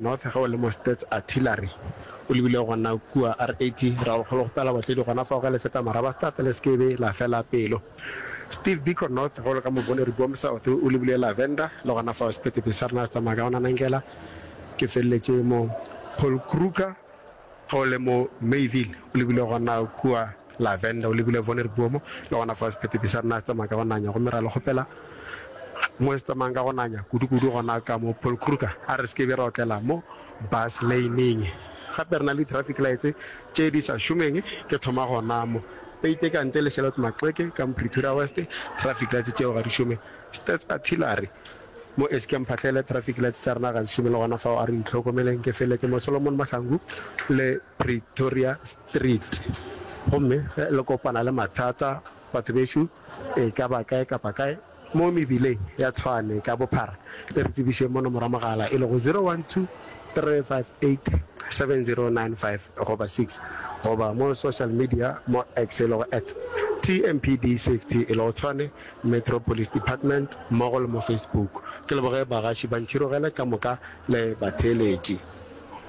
North ge o le mo Stats Artillery o lebile gona kua RAT ra go kgologopela batledi gona fao ge le feta Marabastad le se ke be la fela pelo. Steve Biko North ge o le ka Moboneri Boom South o lebile Lavender le gona fao sephethephethe sa rena se tsamaya ka gona Nangela ke feleletše mo Paul Kruger Ge o le mo Mayville, o lebile gona kua Lavender, o lebile Vonerboom, le gona fao sephetepi sa rena se tsamaya ka go nanya. Gomme ra le kgopela, mo se tsamayang ka go nanya, kudukudu gona ka mo Paul Kruger, a re se ke be ra otlela mo bus lane-ing. Gape re na le di-traffic lights tše di sa šomeng. Ke thoma gona mo Pate ka ntle le Charlotte Maxeke, ka mo Pretoria West, traffic lights tšeo ga di šome. Stats Artillery. Mo e se ke mphahlele traffic lights tša rena gantši mo le gona fao a re itlhokomeleng. Ke feletše mo Solomon Mahlangu le Pretoria Street gomme ge le kopana le mathata batho bešo e ka ba kae kapa kae mo mebileng ya Tshwane ka bophara le re tsebišeng mo nomoro ya mogala e lego 0123587095 goba 6 goba mo social media mo X e lego at TMPD Safety e lego Tshwane Metro Police Department mmogo le mo Facebook. Ke leboge bagaši ba ntšhirogele ka moka le batheeletši.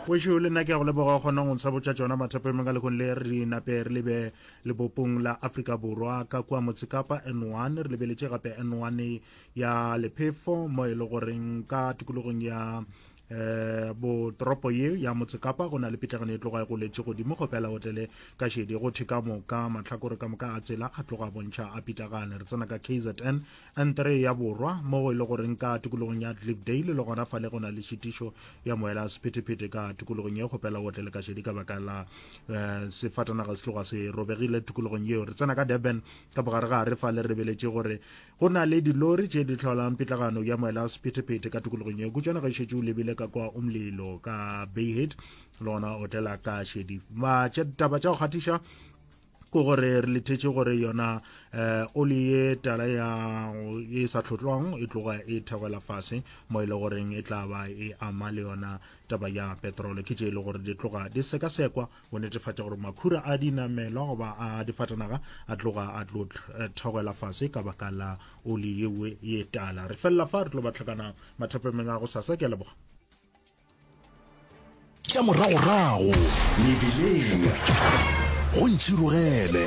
Gešo le nna ke a go leboga o kgona go ntsha botša tšona mathapo emeng ka lekgong le re di nape re lebe lebopong la Afrika Borwa ka kua Motsekapa N1 re lebeletše gape N1 ya lephefo mo e le goreng ka tikologong ya eh bo toropo ye ya motsekapa go na le pitlagano e tloga e goletše godimo go pela otele ka šedi go thwe ka moka mahlakore ka moka a tsela a tloga bontšha a pitlagane re tsena ka kzn n3 ya borwa mo go e le goreng ka tikologong ya dlipdale le gona fa le go na le šitišo ya moela sephetephete ka tikologong ye go pela otele ka šedi ka baka la eh, sefatanaga se tloga se robegile tikologong yeo re tsena ka durban ka bogare ga re fa le rebeletše gore Go na le dilori tše di tlholang pitlagano ya moela wa sephethephethe ka tokologong yeo. Kutšana ge šetše o lebile ka kwa umlilo ka Bayhead le gona o tlela ka šedi. Taba tša go kgatiša ke gore re lethetše gore yona eh oli ye tala ya e sa tlhotlwang e tloga e theogela fase mo e le goreng e tla ba e ama le yona taba ya petrole ke tše e le gore di tloga di sekasekwa go netefatša gore makhura a dinamelwa goba a difatanaga a tloga a tlo eh, thogela fase ka baka la oli yewe ye tala re felela fa re tlo ba tlhakana mathapemeng a go sasa ke a leboga tša moragorago mebileng go ntšhirogele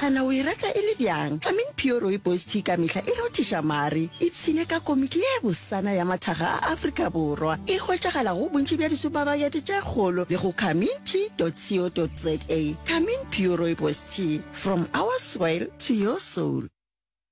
A na o e rata e le bjang? I mean pure rooibos tea ka mehla e rothiša mare. Ipshine ka komiki ye bosana ya mathaga a Afrika Borwa. E hwetšagala go bontši bja disupamakete tše kgolo le go carmintee.co.za. Carmine pure rooibos tea, from our soil to your soul.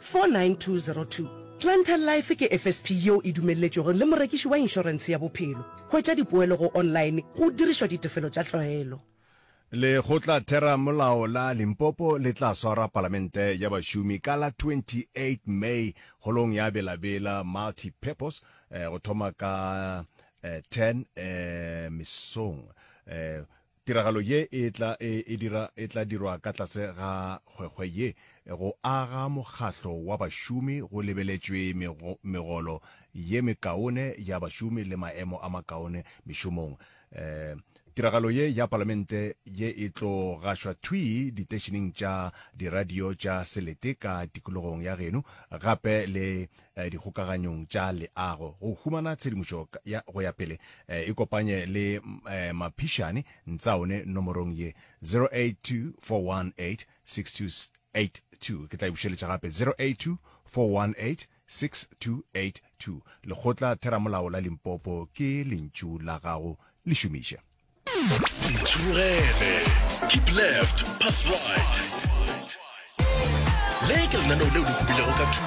49202. Clientele Life ke FSP yeo e dumelletšwego le morekiši wa inšorense ya bophelo. Hwetša dipoelo go online go dirišwa ditefelo tša tlwaelo. Lekgotlatheramolao la Limpopo le tla swara Palamente ya Bašomi ka la 28 May Holong ya Bela Bela Multipurpose go thoma ka 10 mesong. Tiragalo ye e tla e e dira e tla dirwa ka tlase ga hwehwe ye go aga mokgahlo wa bašomi go lebeletšwe mego, megolo ye mekaone ya bašomi le maemo a makaone mešomong. Um Tiragalo ye ya Palamente ye e tlo gašwa thwii diteišeneng tša diradio tša selete ka tikologong ya geno gape le eh, dikgokaganyong tša leago go humana tshedimošo ya go ya pele eh, ikopanye le eh, maphišane ntsaone nomorong ye 0824186282 ke tla e bušeletša gape 0824186282 lekgotla theramolao la limpopo ke lentšu la gago le šomiše Ntshurugele. Keep left, pass right. Le ke lenaneo leo le hubilego ka thuto.